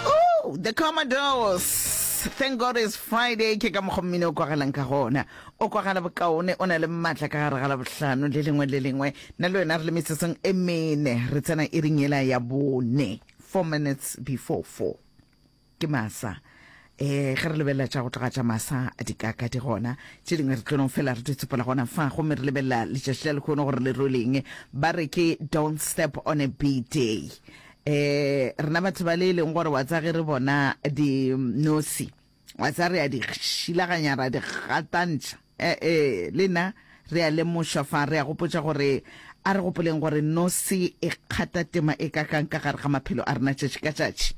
Oh, the Commodores. Thank God it's Friday ke ka mokgwa mmino o kwagalang ka gona o kwagala bokaone o na le maatla ka gare ga la bohlano le lengwe le lengwe na le wena re le metsotsong e mene re tsena e ring ela ya bone four minutes before four ke masa eh ge re lebelela tša go tloga tša masa di kaka di gona tše dingwe re tlonong fela re ditsepola gona fa gomme re lebelela letšatši la lekgono gore le rweleng ba re ke don't step on a b day eh rena batho ba le e leng gore wa tsa ge re bona dinosi wa tsa re ya di šilaganya ra di gatantšha E-e, le na re a lemošwa fa re a gopotša gore, A re gopoleng gore nosi e kgata tema e kakang ka gare ga maphelo a rena tšatši ka tšatši.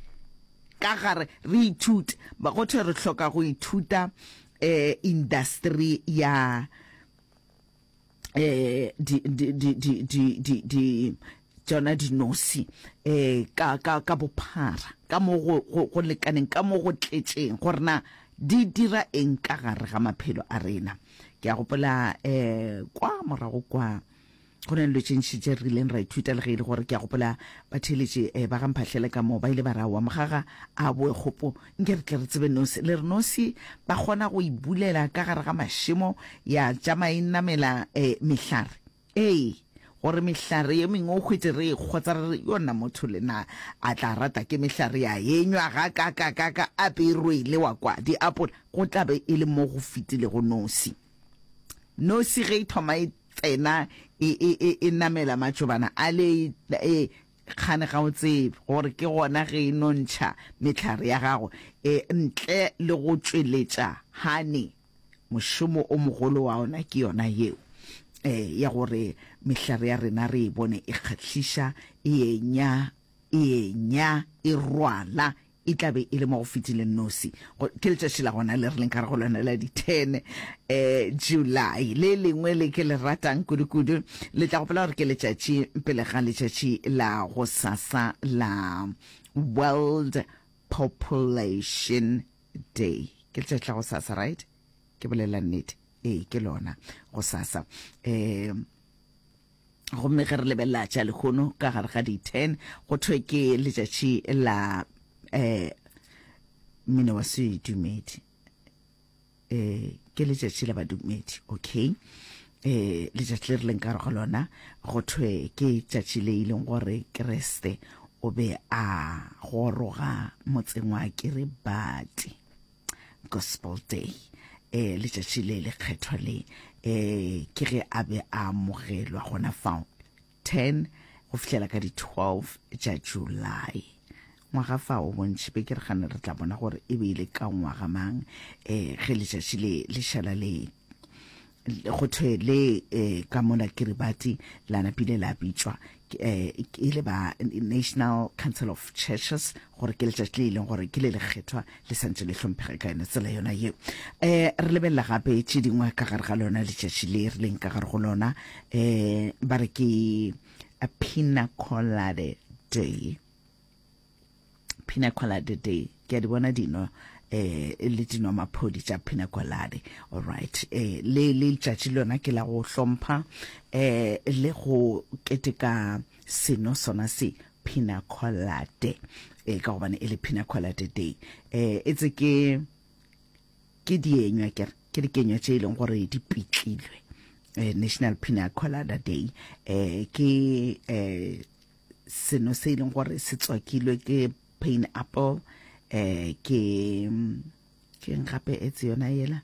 Ka gare, re ithute. Go thwe re hloka go ithuta um indasteri ya um di, di, di, di, di, di, di, tšona dinosi um ka, ka, ka bophara ka mo go, go, go lekaneng ka mo go tletšeng gore na di dira eng ka gare ga maphelo a rena ke a gopola um kwa morago kwa go na le dilo tše ntši tše re rileng ra ithuta le ge e le gore ke a gopola batheeletše um eh, ba ga mphahlele ka moo ba ile ba ra wa mogaga a boe kgopo nke re tle re tsebe nosi le re nosi ba kgona go ibulela ka gare ga mašemo ya tšama e namela um mehlare Ee, gore mehlare ye mengwe o hwetše re e kgotsa re re, Yona motho le na a tla rata ke mehlare ya enywa gakakakaka a pe e rwele wa kwa diapola? Go tla be e le mo go fetilego nosi. Nosi ge e thoma e tsena e, e, e, e namela matšobana a le, e, kgane ga o tsebe gore ke gona ge e no ntšha mehlare ya gago e, ntle le go tšweletša hane. Mošomo o mogolo wa ona ke yona yeo e, ya gore mehlare ya rena re e bone e kgahliša, e enya, e enya, e rwala, e tla be e le mo go fetileng nosi. Ke letšatši la gona le re leng ka re go lona la di ten um eh, July. Le lengwe le ke le ratang kudu-kudu le tla gopola gore ke letšatši pele ga letšatši la go sasa la World Population day ke letšatši tla go sasa right ke bolela nnete ee ke lona go sasa um gomme ge re lebelela tša lehono ka gare ga di-ten go thwe ke letšatši la um mmino wa sedumedi um ke letšatši la badumedi okay eh letšatši le re leng ka go lona go thwe ke tšatši le e leng gore keresete o be a goroga motseng wa kiribati gospel day eh letšatši le le kgethwa le eh ke ge a be a amogelwa gona fao 10 go fihlela ka di 12 tša July ngwaga fa o bontšhi be ke re gane re tla bona gore e be ile ka ngwaga mang eh ge letšatši le le šala le go thwe le eh ka mona kiribati la napile la bitšwa eh e le ba national council of churches gore ke letšatši le e leng gore ke le lekgethwa le santse le hlomphege ka yone tsela yona ye um re lebelela gape tše dingwe ka gare ga lona letšatši le re leng ka gare go lona um ba re ke a pina collade day pina collade day ke a di bona dino eh le dino maphodi tša pina collade all right eh le le letšatši lona ke la go hlompha eh le go keteka seno sona se Pinacolate. E ka gobane e le Pinacolate Day. E etse ke ke dienywa ke ke dikenywa tše e leng gore di pitlilwe. Eh, National Pina Colada Day eh ke eh seno se e leng gore se tswakilwe ke pineapple eh ke ke gape etse yona yela